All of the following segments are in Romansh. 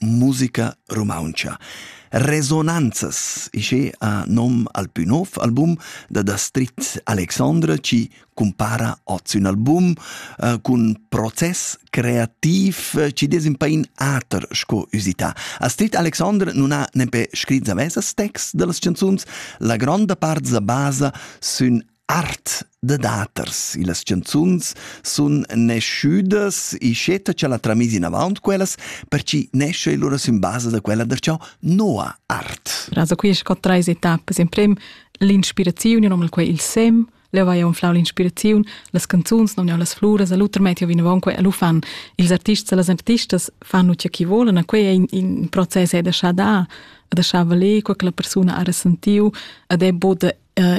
musica rumauntscha. Resonanzas isce a nom al plü nov album da Dastrit Alexandra ci compara oz ün album uh, cun process creativ uh, ci des un pain ater sco usità. Astrid Alexandra non ha nempe scrit zavesas text dellas canzuns, la gronda part da basa sün Art da daters. Las chanzuns sun naschüdas ischetta cha l'ha tramìs inavaunt quellas, perche nescha e lura sün basa da quella darcheu noa art. Also qui es scott trais etappas. In prem l'inspiraziun, io nomna'l quai il sem, leu vai unflau l'inspiraziun, las canzuns non las fluras, a l'uter metti vinavon quei, lu fan ils artists e las artistas fanno ciò che vogliono, quei è in, in proces è da da da valer, quella persona ha ressentiu ed è bod uh,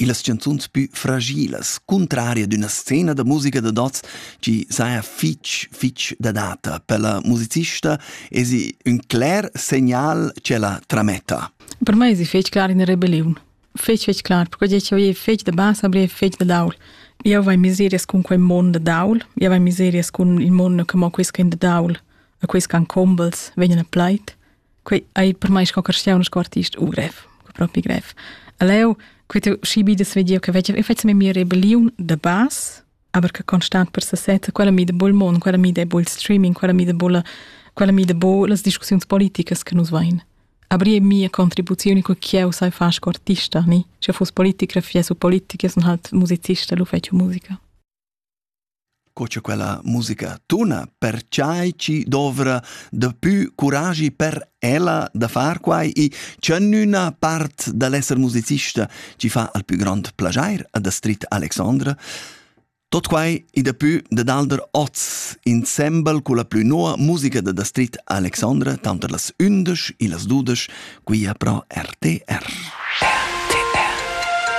illas chanzuns pü fragilas, cuntraria d'üna scena da musica dad hoz chi saja fich, fich dadata. Pella musicista esi ün cler segnal ch'ella trametta. Per mai esi fich clar in rebelliun. Fich, fich clar, perque che eu ei fich da basa, aber ei fich da daul. Eu vai miserias cun quei mond da daul, eu vai miserias cun il mondo che mo quis che in da daul, e quis can combels, vegnan a plait, Quei ei per mei sco cristian sco artist u grev, propi grev. Leu, quei tu schi bi da vediu che vecchia, io faccio mia rebellion da base, aber che constant per sesetta, quella mi de bol mon, quella mi de bol streaming, quella mi de bol quella mi de bol las discussiuns politicas che nus vain. Aber je mia contribuzioni che cheu sai far sco artista, ni? Se fuss politiker, fiessu politiker, sun halt musicista, lu fetju musica. co cha quella musica tuna, perchai chi dovra dapü curagi per ella da far quai i tschernüna part da l'esser musicista chi fa al pü grond plaschair ad Astrid Alexandra. Tot quai i dapü dad alder oz, insembel culla plü noa musica dad Astrid Alexandra, tanter las ündesch e las dudesch, quia pro RTR. RTR.